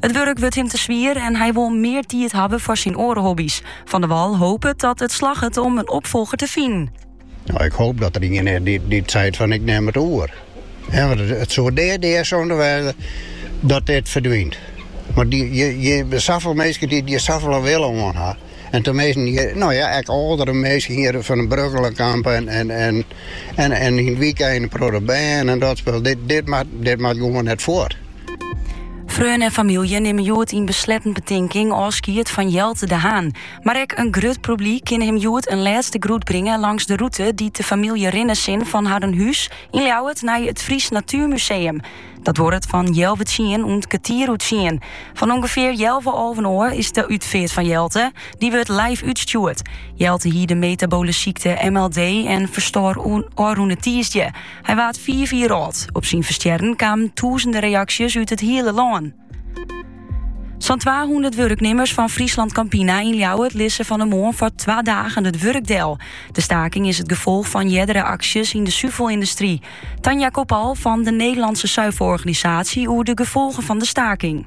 It wurk wurdt him te swier en hy wol mear tiid hawwe foar syn oare hobby's. Van der Wal hopet dat it slagget om in opfolger te finen. No, ik hoop dat der ien is dy't, dy't seit fan ik nim it oer. Ja, want it, it soe dea dea sonde wêze dat dit ferdwynt. Want dy, je, je safolle minsken dy't der safolle wille oan ha. En dan minsken, no ja, ek âldere minsken hjir fan de Brugchelencamp en, en, en, en, en yn it wykein protte bern en dat spul. Dit, dit, mei, dit mei gewoan net fuort. Freonen en famylje nimme hjoed yn besletten betinking ôfskied fan Jelte de Haan. Mar ek in grut publyk kin him hjoed in lêste groet bringe langs de rûte dy't de famylje rinne sil fan harren hûs yn Ljouwert nei it Frysk Natuermuseum. Dat duorret fan healwei tsien oant kertier oer tsien. Fan ûngefear healwei alven ôf is de útfeart fan Jelte. Dy wurdt live útstjoerd. Jelte hie de metaboale sykte MLD en ferstoar ôfrûne tiisdei. Hy waard fiif jier âld. Op syn ferstjerren kamen tûzenden reaksjes út it hiele lân. Sa'n 200 wurknimmers fan FrieslandCampina yn Ljouwert lizze fan 'e moarn foar twa dagen it wurk del. De staking is it gefolch fan eardere aksjes yn de suvelyndustry. Tanja Kopal fan de Nederlandse Zuivelorganisatie oer de gefolgen fan de staking.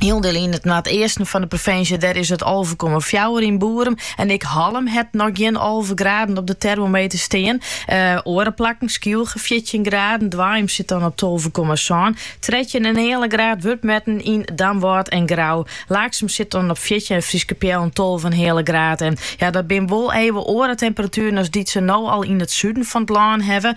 Hielendal yn it noardeasten fan de provinsje, dêr is it alve komma fjouwer yn Boerum. En ek Hallum hat noch gjin alve graden op de termometer stean. Eh, oare plakken, Skylge fjirtjin graden, Baaium sit dan op tolve komma sân. Trettjin en heale graad wurdt metten yn Damwâld en Grou. Laaksum sit dan op fjirtjin en Fryske Peallen tolve en heale graden. Ja, dat binne wol even oare temperatueren as dy't se no al yn it suden fan it lân hawwe.